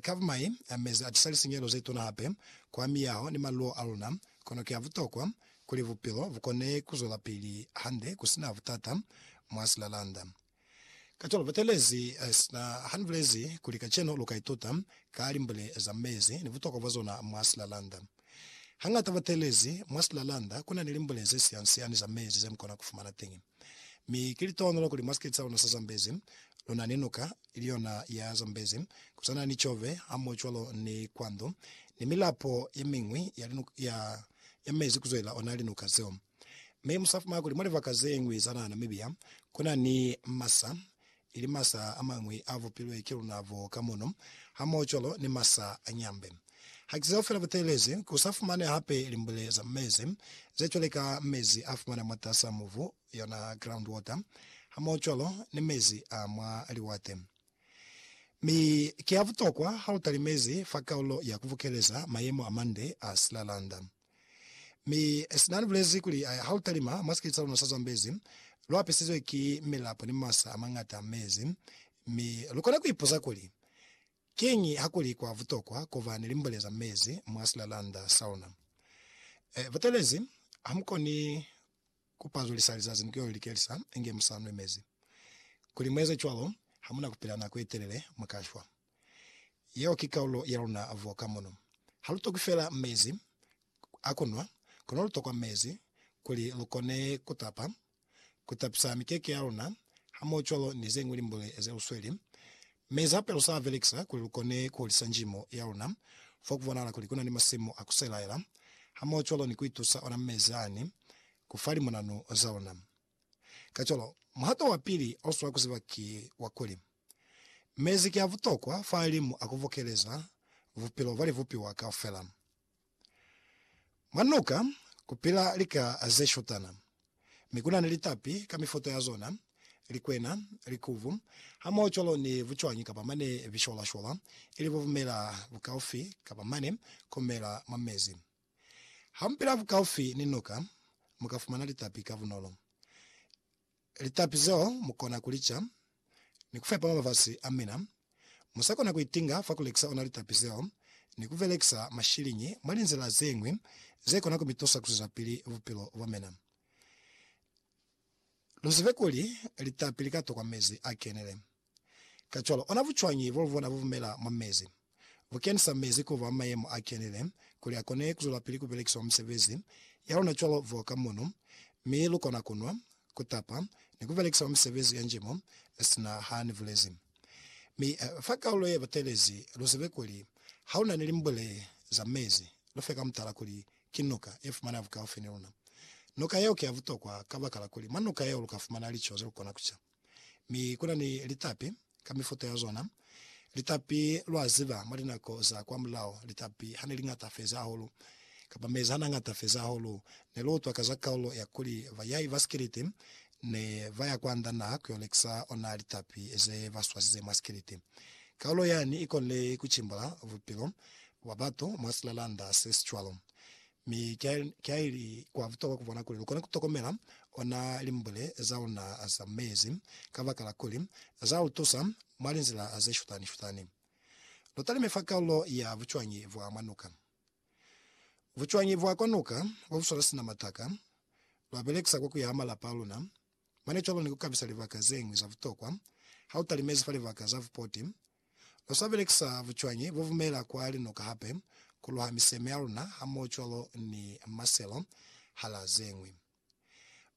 Kavumai, mezi a tisa lisinyehelo ze tuna hape kwa miyaho ni maluo a luna. Kono ki a butokwa kuli bupilo bu kone ku zwelapili hande ku si na butata mwa silalanda. Kacwalo, Butelezi sina ha ni bulezi kuli kacenu lu ka ituta ka limbule za mezi ni butokwa bwa zona mwa silalanda. Hangata butelezi mwa silalanda ku na ni limbule ze siansiani za mezi ze mu kona ku fumana teñi. Mi ki litonolo kuli mwa sikiti sa luna sa Zambezi, luna ni nuka, ili yona ya Zambezi, ku swana ni Tshove, hamohocwalo ni Kwandu, ni milapo ye miñwi ya linuka ya, ya mezi kuzwelela ona linuka zeo. Mi musafumana kuli mwa libaka ze ñwi za naha Namibia, kuna ni masa ili masa a mañwi a vupilwe ki luna bo ka muno, hamohocwalo ni masa a nyambe. Haki zeo fela buteelezi, ku sa fumane hape limbule za mezi, ze cwale ka mezi a fumana mwatas'a mubu, yona groundwater, hamohocwalo ni mezi a mwa liwate. Mi ki a butokwa ha lu talimezi fa kaulo ya ku bukeleza mayemo a mande a silalanda. Mi sina ni bulezi kuli, Ha lu talima mwa sikete sa luna sa Zambezi, lu apisizwe ki milapo ni masa a mañata a mezi. Mi lu kona ku ipuza kuli, Kiñi ha kuli kwa butokwa ku ba ni limbole za mezi mwa silalanda sa luna? E, butelezi, ha mu koni ku pazulisa lizazi ni ku yo likelisa inge mu sa nwe mezi. Kuli mu eze cwalo, ha mu na ku pila nako ye telele, mu ka shwa. Yeo ki kaulo ya luna vo ka mono. Ha lu tokwi fela mezi a ku nwa, kono lu tokwa mezi kuli lu kone ku tapa, ku tapisa mikeke ya luna, hamohocwalo ni ze ñwi limbule ze lu sweli. Mezi hape lu sa a belekisa kuli lu kone ku hulisa njimo ya luna fo ku bonahala kuli ku na ni masimu a ku selaela, hamohocwalo ni ku itusa ona mezi ani ku fa limonanu za luna. Kacwalo, muhato wa pili o swa ku ziba ki wa kuli, Mezi ki a butokwa fahalimu a ku bokeleza bupilo bwa libupiwa kaufela. Mwa nuka ku pila lika ze shutana, mi ku na ni litapi ka mifuta ya zona, likwena, likubu, hamohocwalo ni bucwañi kapa mane bisholashola, ili bo bumela bukaufi kapa mane ku mela mwa mezi. Ha mu pila bukaufi ni nuka, mu ka fumana litapi ka bunolo. Litapi zeo mu kona ku li ca ni ku fepa mabafasi a mina. Mu sa kona ku itinga fa ku lekisa ona litapi zeo ni ku belekisa mashiliñi mwa linzila ze ñwi ze kona ku mi tusa ku zwezapili bupilo bwa mina. Lu zibe kuli litapi li ka tokwa mezi a kenile. Kacwalo, ona bucwañi bo lubona bu bumela mwa mezi? Bu kenisa mezi ku ba mayemo a kenile kuli a kone ku zwelapili ku belekiswa mwa misebezi ya luna cwalo f'o ka mono, mi lu kona ku nwa, ku tapa, ni ku belekisa mwa misebezi ya nji mo sina ha ni bulezi. Mi fa kaulo ye batelezi, lu zibe kuli ha lu na ni limbule za mezi, lu fe ka mutala kuli ki nuka ye fumaneha bukaufi ni luna. Nuka yeo ki ya butokwa kabakala kuli mwa nuka yeo lu ka fumana lico ze lu kona ku ca. Mi kuna ni litapi ka mifuta ya zona. Litapi, lwa ziba, mwa linako za kwamulaho, litapi ha ne liñata feza hahulu, kamba mezi ha nañata feza hahulu, ne lu utwa ka za kaulo ya kuli bayai ba sikiliti ne ba ya kwa nda naha ku yo lekisa ona litapi ze ba swazize mwa sikiliti. Kaulo yani i konile ku cimbula bupilo bwa batu mwa silalanda se si cwalo. Mi kiaili kwa butokwa kubona kuli lukona kutokomela ona limbule zauna za mezi, kabakala kuli zautusa mwa linzila zeshutani-shutani. Lutalime fa kaulo ya bucwañi bwa mwa nuka. Bucwañi bwa kwa nuka bobuswala sina mataka, lwabelekisa kwa kuyaha malapa aluna, mane cwalo ni kukabisa libaka zeñwi za butokwa hautalimezi fa libaka za bupoti Lu sa belekisa bucwañi bo bumela kwa linuka hape ku luha miseme ya luna hamohocwalo ni maselo, hala ze ñwi.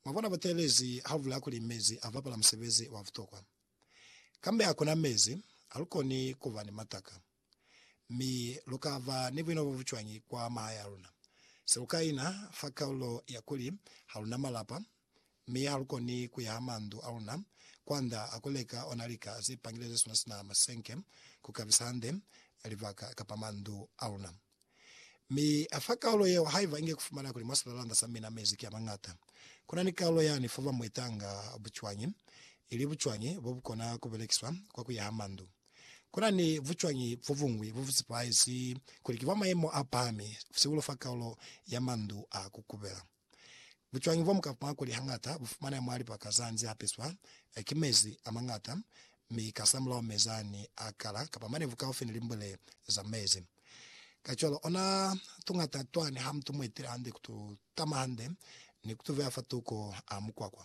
Mwa bona buteelezi ha bu bulaya kuli mezi a bapala musebezi wa butokwa. Kambe ha ku na mezi, ha lu koni ku ba ni mataka. Mi lu ka ba ni buina bo bucwañi kwa mahaya a luna? Se lu ka ina fa kalulo ya kuli ha lu na malapa, mi ha lu koni ku ya ha mandu a luna kwanda a ku leka ona lika ze pangileze sona sina masenke ku kabisa hande libaka kapa mandu a luna. Mi a fa kaulo yeo haiba inge ku fumana kuli mwa silalanda sa mina mezi ki a mañata. Ku na ni kaulo yani fo ba mu itanga bucwañi, ili bucwañi bo bu kona ku belekiswa kwa ku ya ha mandu. Ku na ni bucwañi bo buñwi bo bu sepahezi kuli ki bwa mayemo a pahami, sihulu fa kaulo ya mandu a ku kubela. Bucwañi bwa mukapwa kuli hañata bu fumaneha mwa lipaka za nzi hapeswa ki mezi a mañata, mi kasamulaho mezi a ni a kala kapa manevu kaufi ni limbwele za mezi. Kacwalo, ona tuñata twa ni ha mutu mu etile hande ku tu tama hande ni ku tu veya fa tuko a mukwakwa.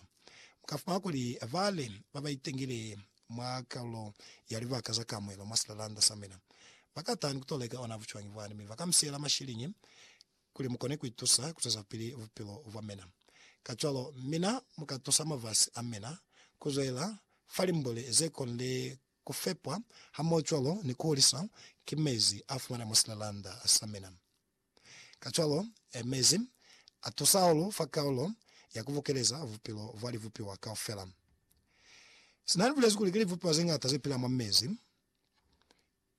Mu ka fumana kuli ba li ba ba itengile mwa kalulo ya libaka za kamuelo mwa silalanda sa mina ba ka taha ni ku to leka ona bucwañi bwani mi ba ka mi siyela mashiliñi kuli mu kone ku itusa ku zwezapili bupilo bwa mina. Kacwalo, mina mu ka tusa mafasi a mina ku zwelela fa limboli ze konile ku fepwa hamohocwalo ni ku huliswa ki mezi a fumana mwa silelanda sa mina. Kacwalo, mezi a tusa hahulu fa kaulo ya ku bukeleza bupilo bwa libupiwa kaufela. Sina li bulezi kuli ki libupiwa ze ñata ze pila mwa mezi,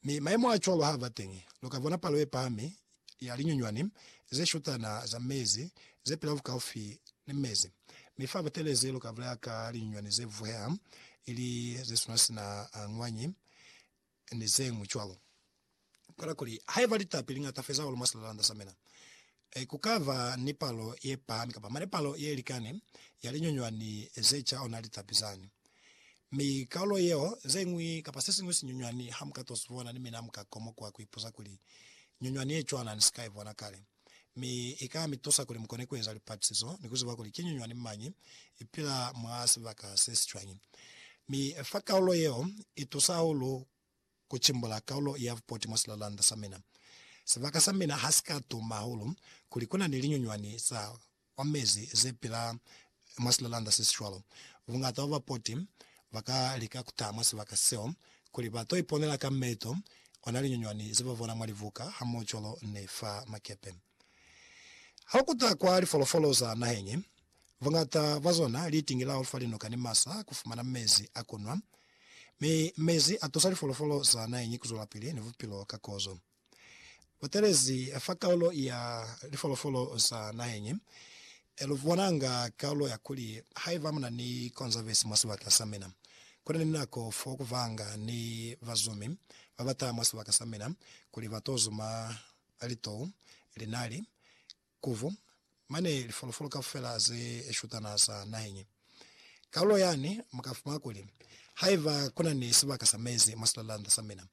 Mi mayemo a cwalo ha ba teñi, lu ka bona palo ye pahami ya linyunywani ze shutana za mezi ze pila bukaufi ni mezi. Mi fa Butelezi lu ka bulaya ka linyunywani ze vuheha, ili ze suna sina a ngwanyi, ni zeñwi cwalo. Kola kuli, haiba litapi li ñata feza hahulu mwa silalalanda sa mina, Ee, ku ka ba ni palo ye pahami kapa mane palo ye likani ya linyunywani ze ca ona litapi zani. Mi kalulo yeo, ze ñwi kapa se siñwi sinyunywani ha mu ka to si bona, ni mina mu ka komokwa ku ipuza kuli, Nyunywani ye cwana ni si ka i bona kale. Mi i ka mi tusa kuli mu kone ku eza lipatisizo ni ku ziba kuli ki nyunywani mañi i pila mwa sibaka se si cwañi. Mi fa kalulo yeo i tusa hahulu Ku cimbula kaulo ya vupoti mwa silalanda sa mina. Sibaka sa mina ha si ka tuma hahulu kuli ku na ni linyunywani za kwa mezi ze pila mwa silalanda se si cwalo. Bungata bwa bapoti ba ka lika ku taha mwa sibaka seo kuli ba to iponela ka meeto ona linyunywani ze ba bona mwa libuka hamoho cwalo ni fa makepe. Ha ku ta kwa lifolofolo za naheñi, buñata bwa zona li tingilaho fa linuka ni masa ku fumana mezi a ku nwa. Mi mezi a tusa lifolofolo za naheñi ku zwelapili ni bupilo ka kozo. Butelezi fa kaulo ya lifolofolo za naheñi lu bonanga kaulo ya kuli, Haiba mu na ni Konzavesi mwa sibaka sa mina, ku na ni nako fo ku vanga ni bazumi ba ba taha mwa sibaka sa mina kuli ba to zuma a litou, linali, kuvu, mane lifolofolo kaufela ze shutana za naheñi. Kalulo yani mu ka fumana kuli, haiba ku na ni sibaka sa mezi mwa silalanda sa mina,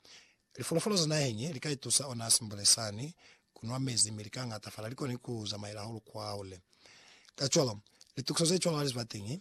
lifolofolo za naheñi li ka itusa ona simbule sani ku nwa mezi mi li ka ngatafala, li koni ku zamaela hahulu kwahule. Kacwalo, litukiso ze cwalo ha li si ba teñi,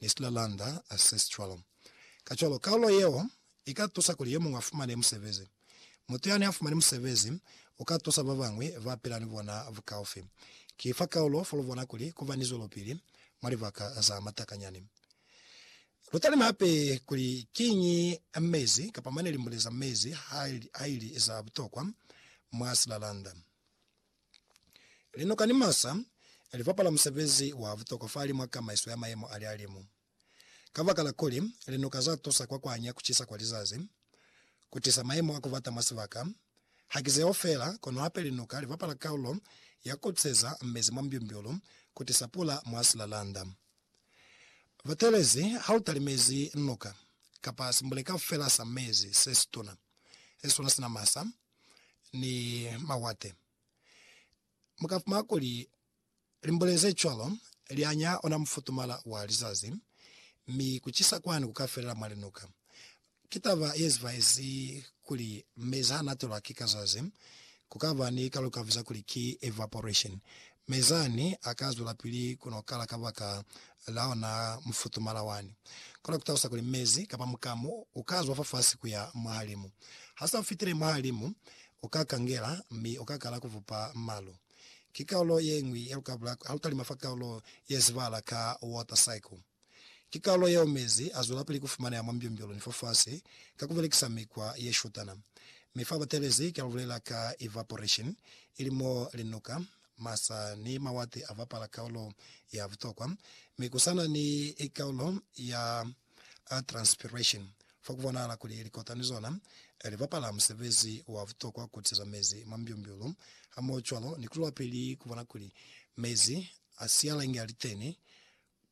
Nistler Lander Ancestral. Kacwalo, kaulo yeo i ka tusa kuli yo muñwi a fumane musebezi. Mutu yani a fumani musebezi u ka tusa ba bañwi ba pila ni bona bukaufi. Ki fa kaulo fo lu bona kuli ku ba ni zwelopili mwa libaka za matakanyani. Lu talime hape kuli kiñi mezi kapa mane limbule za mezi ha ili za butokwa mwa Slalanda. Linoka ni masa li bapala musebezi wa butokwa fahali mwa kamaiso ya mayemo a lihalimu. Kabakala kuli linoka za tusa kwa kuanya kucisa kwa lizazi, ku tisa mayemo a kubata mwa sibaka, haki zeo feela, kono hape linoka li bapala kaulo ya kukuseza mezi mwa mbyumbyulu, ku tisa pula mwa silalanda. Batelezi, ha u talimezi noka, kapa simbule kaufela sa mezi, se situna, se sona sina masa, ni mawate. Mukafumana kuli limbule ze cwalo lianya ona mufutumala wa lizazi, mi kucisa kwani kukafelela mwa linuka. Ki taba yezibaezi kuli mezi hanatelwa ki kazazi, kukaba ni kalukaviza kuli ki evaporation. Mi zani a ka zwelapili ku no kala kabaka la ona mufutumala wani. Kono ku talusa kuli mezi kapa mukamu u ka zwa fafasi ku ya mwahalimu. Ha sa fitile mwahalimu, u ka kangela mi u ka kala ku vupa malu. Ki kaulo ye ñwi ya lukabula ha lu talima fa kaulo ye zibahala ka water cycle. Ki kalulo yeo mezi azwelapili kufumaneha mwa mbyumbyulu ni fafasi ka kubelekisa mikwa yeshutana. Mi fa batelezi kia lubulela ka evaporation, ili mo linuka, masa ni mawati avapala kaulo ya butokwa, mi kusana ni kaulo ya transpiration, fa kubonahala kuli likota ni zona livapala musebezi wa butokwa kutiza mezi mwa mbyumbyulu hamohocwalo ni kulwelapili kubona kuli mezi asialenge aliteni